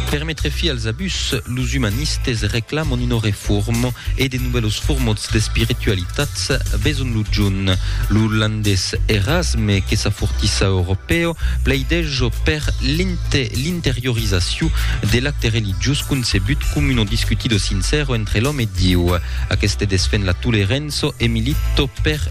Per metre fi als abús, los umanistes reclaman una reforma e de novèlos formats d'espiritualitats veson lo junh. Lo landés Erasme, que s'afortissa europèu, plaideja per l'interiorizacion de l'acte religiós concebut com una discutida sincèra entre l'òme e Dieu. Aqueste desfend la tolerança e milita per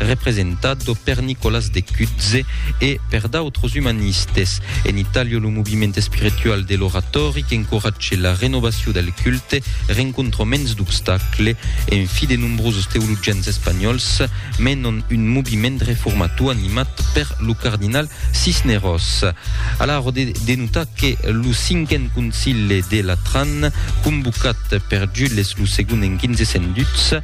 representado per Nicolas de Cutze e per d'autres umanistes. En Itàlia, lo moviment espiritual de l'oratòri qu'encoratge la renovacion del culte rencontra mens d'obstacles, en fi de nombroses teologians espanhòls menon un moviment reformator animat per lo cardinal Cisneros. A la ròde de notar que lo cinquen concile de Latran, convocat per Jules lo segon en 1502,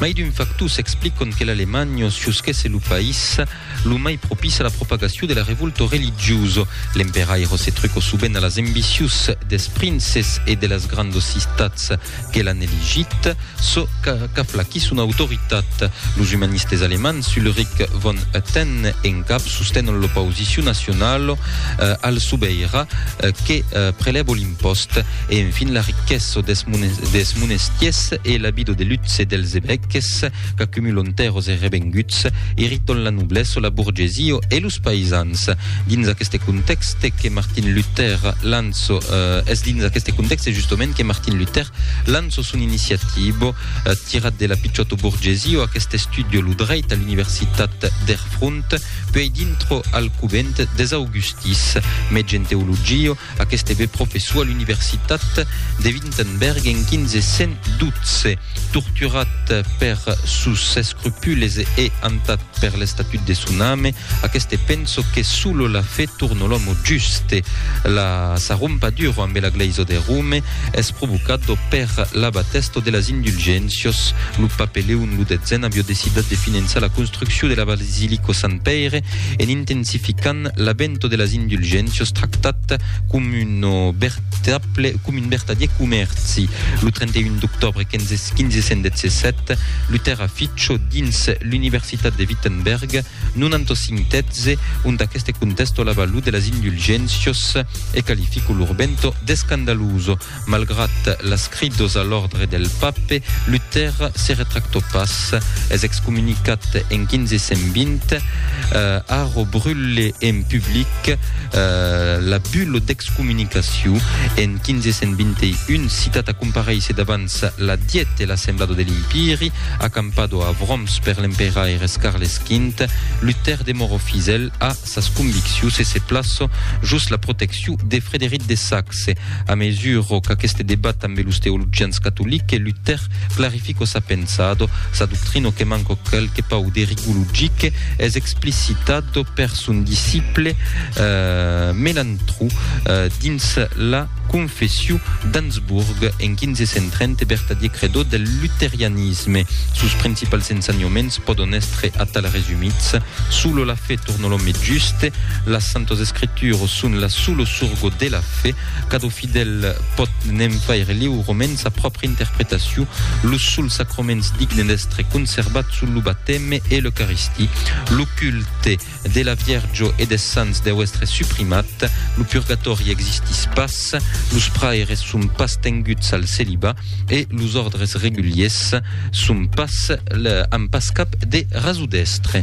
Mai d'un factors explicon que l'Alemanha siusquèsse lo país lo mai propís a la propagacion de la revulta religiosa. L'emperaire se truco sovent a las embicius des princes e de las grandas cistats que l'an elegit, çò qu'aflaquís son autoritat. Los umanistes alemands Ulrich von Hutten e Ngab sostenon l'opausicion nacionala al sobeira que prelèva l'impòst. E enfin la riquessa des, des monestiers e la vida de luxe dels evèques qu'acumulon tèrras e revenguts, irriton la noblessa, la borgesia e los païsans. Dins aqueste contèxte que Martin Luther lanço, eh, es dins aqueste contèxte justament que Martin Luther lanço son iniciativa, eh, tirat de la pichota borgesia, aquest estudio lo dreit a l'universitat d'Erfront, puèi dintro al covent des augustis, mètge en teologia, Aqueste ebe professor a l'universitat de Wittenberg en 1512. Torturat per sos escrupules e hantat per l'estatut de son ame, aqueste penso que solo la fe torno l'òmo juste. La sa rompaduro ambe la Glèisa de Rome es provocado per l'abatesto de las indulgéncios. Lo pape Leon lo detzen avió decidat de finançar la construccion de la basilico Sant Pèire en intensificant l'abento de las indulgéncias tractat com un vertable com un vertadier comèrci. Lo 31 d'octobre 1517, Luther aficho dins l'Universitat de Wittenberg 95 tètze ont aqueste contesto la valor de las indulgéncias e qualifico lor bento d'escandaluso. Malgrat las cridos a l'òrdre del pape, Luther se retractò pas. Es excomunicat en 1520, Haro brule en public la bulo d'excomunicacion. En 1521 citat a comparéisser davants la Dièt e l'assemblado de l'Impiri, acampado a Worms per l'emperaires Carles V, Luther demorò fidèl a sas conviccions e se plaço jos la proteccion de Frederic de Saxe. A mesuro qu'aqueste debat ambe los teologians catoliques, Luther clarifico sa pensado, sa doctrino que manco quelque pauc de rigor logique es explicitado per son disciple Melantrou dins la Confession d'Ansburg en 1530 e vertadier credó del luterianisme. Sos principals ensenhoments pòdon èstre atal resumits, Sulo la fe turno l'òme juste, Las santos escrituros son la sulo surgo de la fe, Cadó fidèl pòt ne'n faire liurement sa pròpria interpretacion, Los sols sacroments dignes d'èstre conservats son lo bateme e l'Eucaristie, Lo culte, de la Vierjo e des Sants deu èstre suprimat, lo purgatòri existís pas, los praires son pas tenguts al celibat e los òrdres reguliers son pas, an pas cap de raso d'èstre.